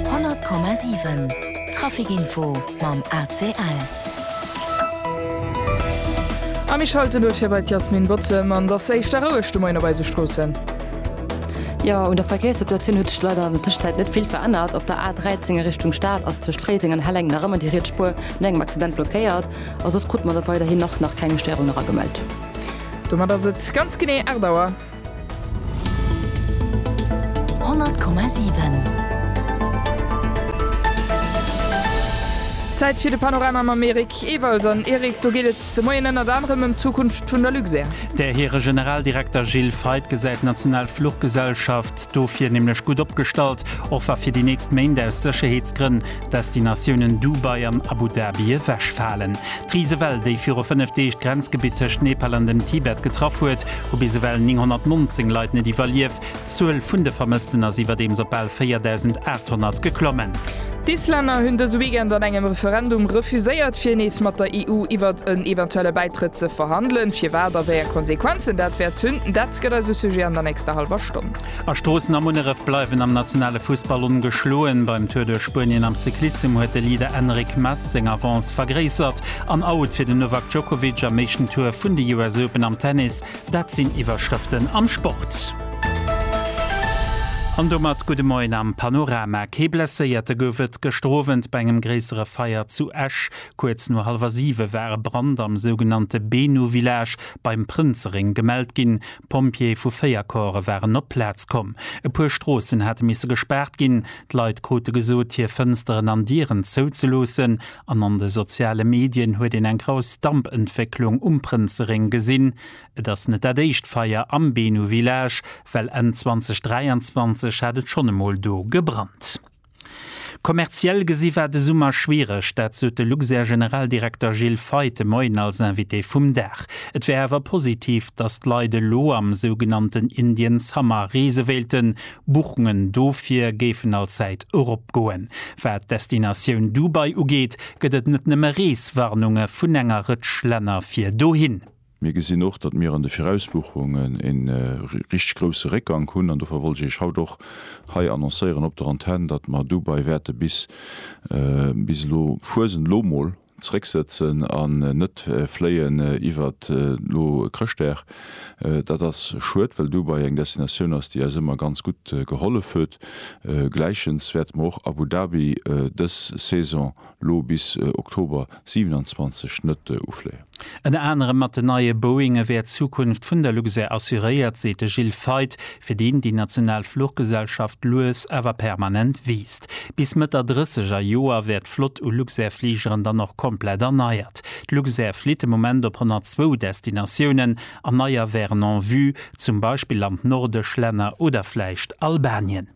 100,7 Trafic Info mam ACL. A mir schalten duerch hir bei d'Yasmin Bozem an dass éischt der roueg de Moien op eise Stroossen. Jo, un der Verkéierssituatioun huet sech leider an der Tëschenzäit net vill verännert. Op der A13 a Richtung Stad ass tëscht Fréiseng an Helleng nach ëmmer déi riets Spuer no engem Accident blockéiert a soss krute mer der weiderhin nach nach keng Stéierung eragemellt. Domat ass et ganz genee 8 Auer. Honnert Komma siwen. Zäit fir de Panorama mam Eric Ewald. An Eric, do geet et de Moien ënnert anerem ëm d'Zukunft vun der Luxair. Där hire Generaldirekter Gilles Feith gesäit d'national Fluchgesellschaft dofir nämlech gutt opgestallt, och wa fir déi nächst Méint aus Sécherheetsgrënn Destinatiounen Dubai an Abu Dhabi ewechfalen. D'Risewell, déi viru 5 Deeg d'Grenzgebitt tëscht Nepal an dem Tibet getraff huet, hu bis ewell 919 Leit net iwwerlief. D'Zuel vun de Vermëssten ass iwwerdeems op bal 4.800 geklommen. D'Islänner hunn dëse Weekend an engem Referendum refuséiert, fir nees mat der EU iwwert en eventuelle Bäitrëtt ze verhandelen. Firwat a wéi eng Konsequenzen dat wäert hunn, dat gëtt eise Sujet an der nächster hallwer Stonn. A Stroossen a Munneref bleiwen am nationale Fussball ongeschloen. Beim Tour duerch Spuenien am Cyclissem huet de Leader Enric Mas seng Avance vergréissert. An Out fir den Novak Djokovic am éischten Tour vun de US Open am Tennis, dat sinn Iwwerschrëften am Sport. An domat gudde Moien am Panorama. Kee Blesséierte gouf et gëschter Owend bei engem gréissere Feier zu Esch. Kuerz no hallwer siwe war e Brand am sougenannte Benouvillage beim Prënzeréng gemellt ginn. D'Pompjeeë vu véier Corpse waren op d'Plaz komm. E puer Stroossen hate misse gespaart ginn. D'Leit krute gesot, hir Fënsteren an Dieren zouzeloossen. An an de soziale Medien huet een eng grouss Dampentwécklung um Prënzeréng gesinn. Et ass net dat éischt Feier am Benu Village, well Enn 2023 hat et schonn emol do gebrannt. Kommerziell gesi war de Summer schwiereg, dat sot de Luxair-Generaldirekter Gilles Feith de Moien als Invité vum Dag. Et wär awer positiv, datt d'Leit elo am sougenannten Indian Summer reese wéilten. Buchungen dofir géifen allzäit eropgoen. Wat d'Destinatioun Dubai ugeet, gëtt et net nëmme Reeswarnunge vun enger Rëtsch Länner fir dohin. Mir gesinn och, datt mir an de Virausbuchungen ee richteg grousse Réckgank hunn an dofir wollt ech Iech haut och hei annoncéieren op der Antenn, datt mer dobei wäerte bis, bis elo, Fuesent elo mol, zrécksëtzen an net fléien iwwert elo Chrëschtdag. Dat ass schued, well Dubai eng Destinatioun ass, déi eis ëmmer ganz gutt gehollef huet. Gläichens wäerte mer och Abu Dhabi dës Saison lo bis Oktober 27 net ufléien. Ënner anerem mat den neie Boeinge wär d'Zukunft vun der Luxair assuréiert, seet de Gilles Feith, fir deen déi national Fluchgesellschaft lues awer permanent wiisst. Bis Mëtt der drësseger Joer wär d'Flott u Luxair-Fligeren dann och komplett erneiert. D'Luxair flitt de Moment op 102 Destinatiounen an neier wären en vue, zum Beispill an d'nordesch Länner oder vläicht Albanien.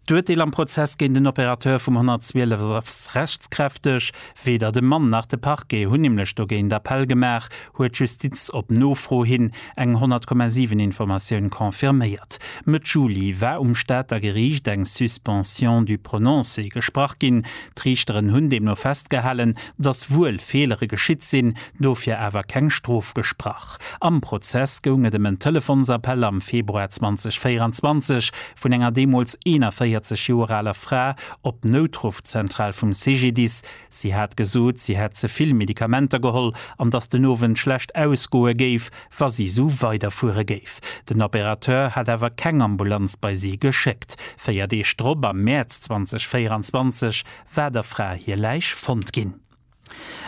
D'Urteel am Prozess géint den Opérateur vum 112 ass rechtskräfteg. Weder de Mann nach de Parquet hunn nämlech dogéint Appell gemaach, huet d'Justiz op Nofro hin eng 100,7 Informatioun confirméiert. Mëtt Juli war um Stater Geriicht eng Suspension du prononcé gesprach ginn. D'Riichteren hunn deemno festgehalen, datt wuel Feelere geschitt sinn, dofir awer keng Strof gesprach. Am Prozess goung et ëm en Telefonsappell am Februar 2024 vun enger deemools 41 Joer aler Fra op d'Noutruffzentral vum CGDIS. Si hat gesot, si hätt ze vill Medikamenter geholl an datt den Owend schlecht ausgoe géif, wa si esou weiderfuere géif. Den Opérateur hat awer keng Ambulanz bei si geschéckt. Véier Deeg drop, am Mäerz 2024, war der Fra hir Läich fonnt ginn.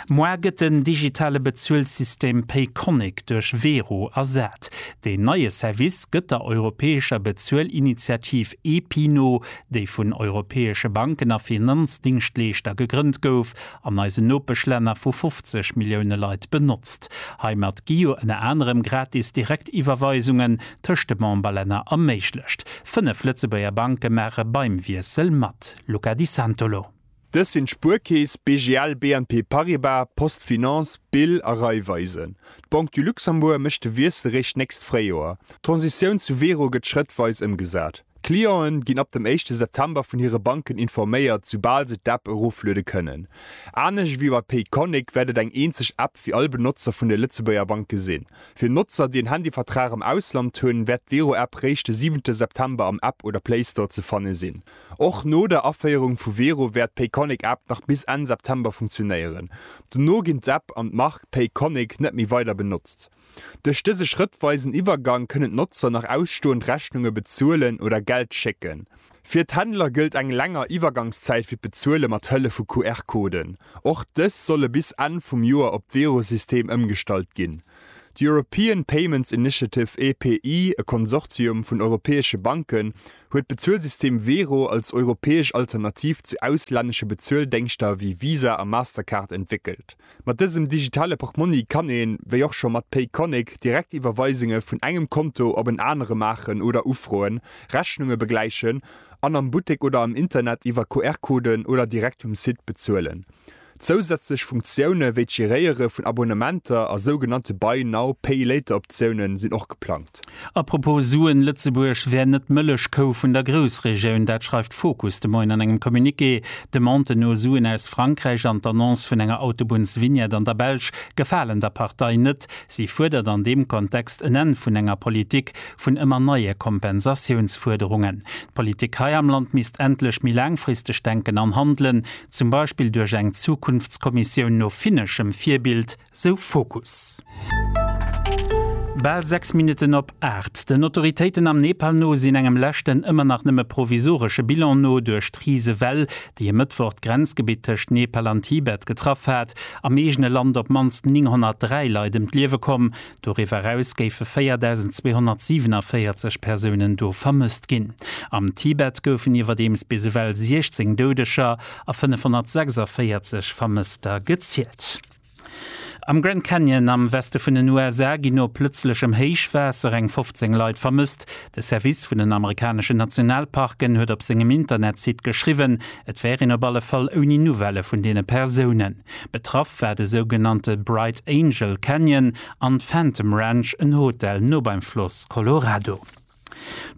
Moar gëtt den digitale Bezuelsystem Payconiq duerch Wero ersat. Deen neie Service gëtt der europäescher Bezuelinitiativ EPI no, déi vun europäesche Banken a Finanzdingschleeschter gegrënnt gouf an eisen Nopeschlänner vu 50 Millioune Leit benotzt. Heimat gi jo ënner anerem gratis Direktiwwerweisungen tëscht de Memberlänner erméiglecht. Fënnef Lëtzebuerger Banke maache beim Wiessel mat, Luca Di Santolo. Dës sinn d'Spuerkeess, BGL, BNP Paribas, Post Finance, Bill a Raiffeisen. D'Banque du Luxembourg mécht de Wiessel réischt d'nächst Fréijoer. D'Transitioun zu Wero gëtt schrëttweis ëmgesat. D'Clienten ginn ab dem éischte September vun hire Banken informéiert, soubal se d'App erofluede kënnen. Anescht ewéi bei Payconiq wäert et eng eenzeg App fir all Benotzer vun de Lëtzebuerger Banke sinn. Fir Notzer, déi en Handyvertrag am Ausland hunn, wäert d'Wero-App réischt de siwente September am App oder Playstore ze fanne sinn. Och no der Aféierung vu Wero wäert d'Payconiq App nach bis Enn September funktionéieren. Dono ginn d'App an d'Mark Payconiq net méi weider benotzt. Duerch dëse schrëttweisen Iwwergang kënnen d'Notzer nach ausstoend Rechnunge bezuelen oder Geld schécken. Fir d'Händler gëllt eng länger Iwwergangszäit fir d'Bezuele mat Hëllef vu QR-Coden. Och dës solle bis Enn vum Joer op d'Wero-System ëmgestallt ginn. D'European Payments Initiative, EPI, e Konsortium vun europäesche Banken, huet d'Bezuelsystem Wero als europäesch Alternativ zu auslännesche Bezueldéngschter wéi Visa a Mastercard entwéckelt. Mat dësem digitale Portmonni kann een, wéi och scho mat Payconiq, direkt Iwwerweisunge vun engem Konto op en anere maachen oder ufroen, Rechnunge begläichen an am Buttek oder am Internet iwwer QR-Coden oder direkt um Site bezuelen. Zousätzlech Funktioune wéi d'Geréiere vun Abonnementer a sougenannte Buy Now, Pay Later Optioune sinn och geplangt. Apropos Suen, Lëtzebuerg wär net d'Mëllechkou vun der Groussregioun. Dat schreift Fokus de Moien an engem Communiqué. D'Demande no Suen aus Frankräich an d'Annonce vun enger Autobunnsvignette an der Belsch gefalen der Partei net. Si fuerdert an deem Kontext en Enn vun enger Politik vun ëmmer neie Kompensatiounsfuerderungen. D'Politik hei am Land misst endlech méi laangfristeg denken an handelen, zum Beispill duerch eng Zukunftskommissioun no finneschem Virbild, sou Fokus. Bal 6 Minutten op 8. Den Autoritéiten am Nepal no sinn engem leschten, ëmmer nach nëmme provisoresche Bilan no, duerch d'Risewell, déi e Mëttwoch d'Grenzgebitt tëscht Nepal an Tibet getraff hat, am eegene Land op d'mannst 903 Leit ëm d'Liewe komm, Doriwwer eraus géife 4.247 Persounen do vermësst ginn. Am Tibet goufen iwwerdeems bis ewell 16 Doudeger a 546 Vermësster gezielt. Am Grand Canyon am Weste vun den USA ginn no plëtzlechem Héichwaasser eng 15 Leit vermësst. De Service vun den amerikaneschen Nationalparken huet op sengem Internetsite geschriwwen, et wär een op alle Fall ouni Nouvelle vun deene Persounen. Betraff war de sougenannte Bright Angel Canyon an d'Phantom Ranch, en Hotel no beim Floss Colorado.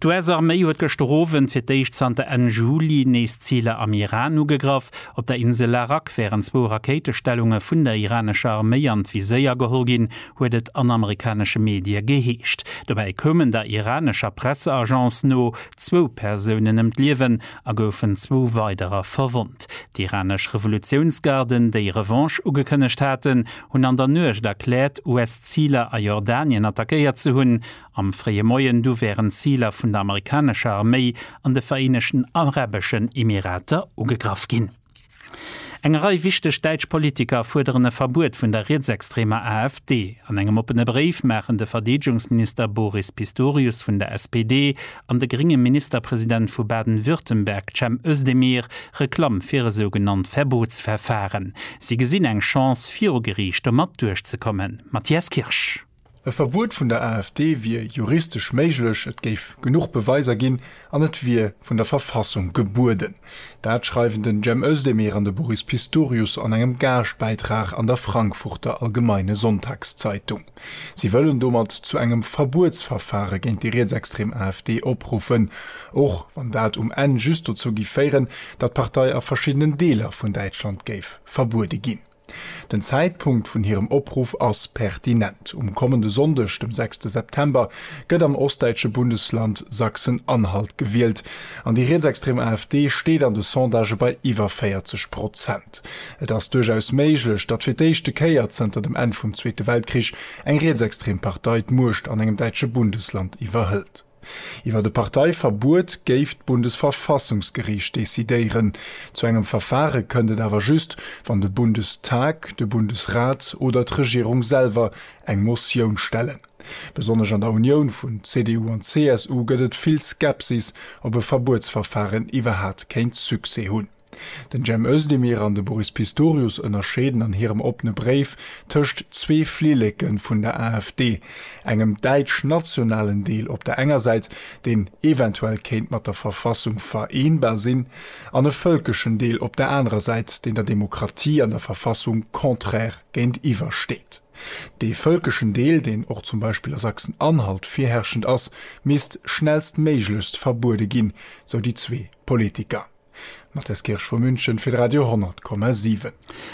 D'US-Arméi huet gëschter Owend fir d'éischt zanter Enn Juli nees Ziler am Iran ugegraff. Op der Insel Larak wären zwou Rakéitestellunge vun der iranescher Arméi an d'Viséier geholl ginn, huet et an amerikanesche Medie geheescht. Dobäi koumen der iranescher Presseagence no zwou Persounen ëm d'Liewen a goufen zwou weiderer verwonnt. D'iranesch Revolutiounsgarden, déi Revanche ugekënnegt haten, hunn an der Nuecht erkläert, US-Ziler a Jordanien attackéiert ze hunn. Am fréie Moien du wären d'Ziler vun der amerikanescher Arméi an de Vereenegten Arabeschen Emirater ugegraff ginn. Eng Rei wichteg däitsch Politiker fuerderen e Verbuet vun der rietsextremer AfD. An engem oppene Bréif maachen de Verdeedegungsminister Boris Pistorius vun der SPD an de grénge Ministerpresident vu Baden-Württemberg Cem Özdemir Reklamm fir e sougenannt Verbotsverfahren. Si gesinn eng Chance viru Geriicht domat duerchzekommen. Matthias Kirsch. E Verbuet vun der AfD wier juristesch méiglech, et géif genuch Beweiser ginn an et wier vun der Verfassung gebueden. Dat schreiwen den Cem Özdemir an de Boris Pistorius an engem Gaaschtbäitrag an der Frankfurter Allgemeine Sonntagszeitung. Si wëllen domat zu engem Verbuetsverfare géint déi rietsextrem AfD opruffen, och wann dat um Enn just dozou géif féieren, datt d'Partei a verschiddenen Deeler vun Däitschland géif verbuede ginn. Den Zäitpunkt vun hirem Opruff ass pertinent, Um kommende Sonndeg, dem 6 September, gëtt am ostdäitsche Bundesland Sachsen-Anhalt gewielt an déi rietsextrem AfD steet an de Sondagë bei iwwer 40 Prozent. Et ass duerchaus méiglech, datt fir d'éischte Kéier zënter dem Enn vum Zweete Weltkrich eng rietsextrem Partei d'Muecht an engem däitsche Bundesland iwwerhëlt. Iwwer e Parteiverbuet géif d'Bundesverfassungsgeriicht decidéieren. Zu engem Verfare kënnt et awer just, wann de Bundestag, de Bundesrat oder d'Regierung selwer eng Motioun stellen. Besonnesch an der Unioun vun CDU an CSU gëtt et vill Skepsis, ob e Verbuetsverfaren iwwerhat kéint Succès hunn. Den Cem Özdemir an de Boris Pistorius ënnerscheeden an hirem oppene Bréif tëscht zwee Flilleke vun der AfD, engem däitsch-nationalen Deel op der enger Säit, deen eventuell kéint mat der Verfassung vereenbar sinn, an e vëlkeschen Deel op der anerer Säit, deen der Demokratie an der Verfassung contraire géintiwwer steet. Dee vëlkeschen Deel, deen och zum Beispill a Sachsen-Anhalt virherrschend ass, misst schnellstméiglechst verbuede ginn, sou déi zwee Politiker. D'Mathilde Kirsch vu München fir Radio 10,7.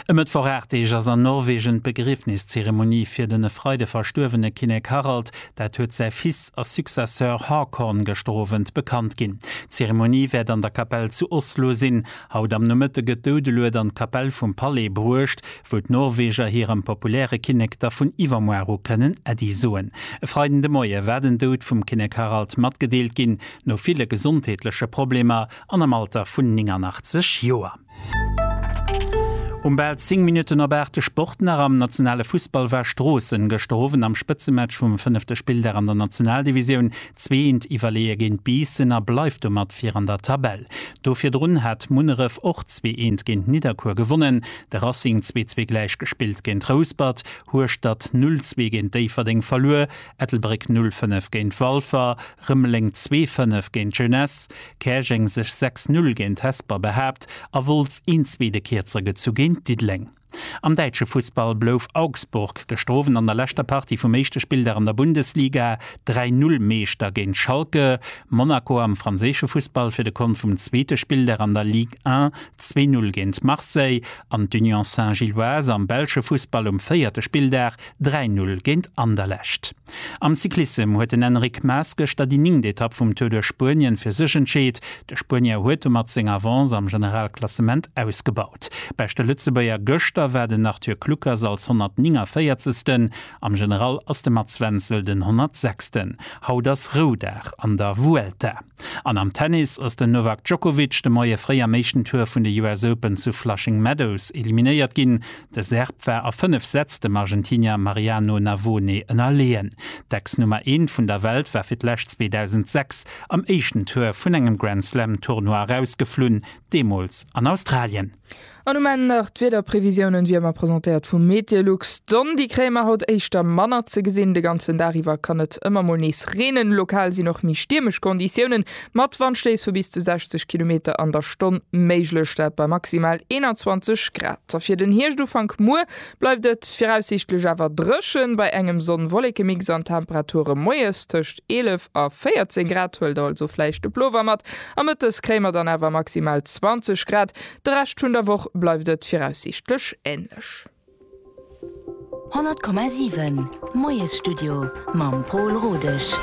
E Mëttwoch 8 Deeg ass an Norwegen d'Begriefniszeremonie fir den e Freide verstuerwene Kinnek Harald. Dat huet säi Fils a Successeur Haakon gëschter Owend bekannt ginn. D'Zeremonie wäert an der Kapell zu Oslo sinn. Haut am Nomëtte gëtt d'Doudelued an d'Kapell vum Palais bruecht, wou d'Norweger hirem populäre Kinnek da vun iwwermuar u kënnen Äddi soen. E Freiden de Moie war den Doud vum Kinnek Harald matgedeelt ginn, no ville gesondheetleche Problemer. an am Alter vun 89 Joer. Um bal 10 Minutten op 8 de Sport nach am nationale Fussball war Stroossen gëschter Owend am Spëtzematch vum fënnefte Spilldag an der Nationaldivisioun zweeënt iwwerleeë géint Biissen a bleift domat vir an der Tabell. Do virdrun hat Munneref och zweeënt géint Nidderkuer gewonnen, de Racing zwee zwee gläich gespillt géint Rouspert, Hueschtert 0 zwee géint Déifferdeng verluer, Ettelbréck 0 fënnef géint Walfer, Rëmeleng zwee Fënnef géint Jeunesse, Käerjeng sech sechs Null géint Hesper behaapt a Wolz een zweete Kierzer gezu géint Diddeleng. Am däitsche Fussball blouf Augsburg, gestrowen an der leschter Partie vum éischte Spilldag an der Bundesliga, dräi Null Meeschter géint Schalke. Monaco am franséische Fussball fir de Kont vum zweete Spilldag an der Ligue 1 zwee Null géint Marseille an d'Union Saint-Gilloise am belsche Fussball um véierte Spilldag dräi Null géint Anderlecht. Am Cyclissem huet den Enric Mas gëschter déi ningt Etapp vum Tour duerch Spuenien fir sech entscheet. De Spuenier huet domat seng Avance am Generalklassement ausgebaut. Beschte Lëtzebuerger gëschter war den Arthur Kluckers als 149. Am General ass de Mats Wenzel den 106. Haut ass Roudag an der Vuelta. An am Tennis ass den Novak Djokovic de Moie fréi am éischten Tour vun de US Open zu Flushing Meadows eliminéiert ginn. De Serb war a 5 Sätz dem Argentinier Mariano Navone ënnerleeën. D'Ex-Nummer Eent vun der Welt war fir d'lescht 2006 am éischten Tour vun engem Grand Slam Tournoi erausgeflunn, deemools an Australien. An um Enn nach d'Wiederprevisiounen, wéi ëmmer presentéiert vum Meteolux. D'Sonn, déi kréie mer haut éischter manner ze gesinn. De ganzen Dag iwwer kann et ëmmer mol nees reenen. Lokal sinn och méi stiermesch Konditiounen mat Wandstéiss vu bis zu 60 Kilometer an der Stonn méiglech, dat bei maximal 21 Grad. A fir den Hierscht-Ufank muer bleift et viraussiichtlech awer dréchen, bei engem Sonn-Wollekemix an Temperature moies tëscht 11 a 14 Grad, huelt also vläicht de Plover mat, a mëttes kréie mer dann awer maximal 20 Grad. De Rescht vun der Woch bleift et viraussiichtlech änlech. 100,7 Moiesstudio mam Pol Rodesch.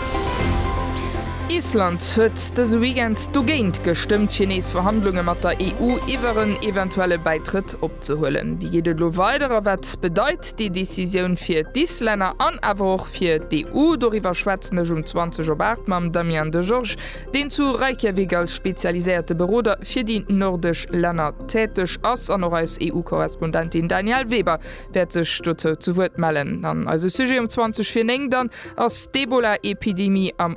Island huet dëse Weekend dogéint gestëmmt, fir nees Verhandlunge mat der EU iwwer en eventuelle Bäitrëtt Kontakt opzehuelen. Wéi geet et elo weider a wat bedeit déi Decisioun fir d'Islänner an awer och fir d'EU? Doriwwer schwätzen ech um 20 op 8 mam Damien Degeorges, deen zu Reykjavik als spezialiséierte Beroder fir déi nordesch Länner täteg ass. An och eis EU-Korrespondentin Danièle Weber wäert sech dozou zu Wuert mellen. An eise Sujet um 20 fir 9 dann ass d'Ebola-Epidemie am.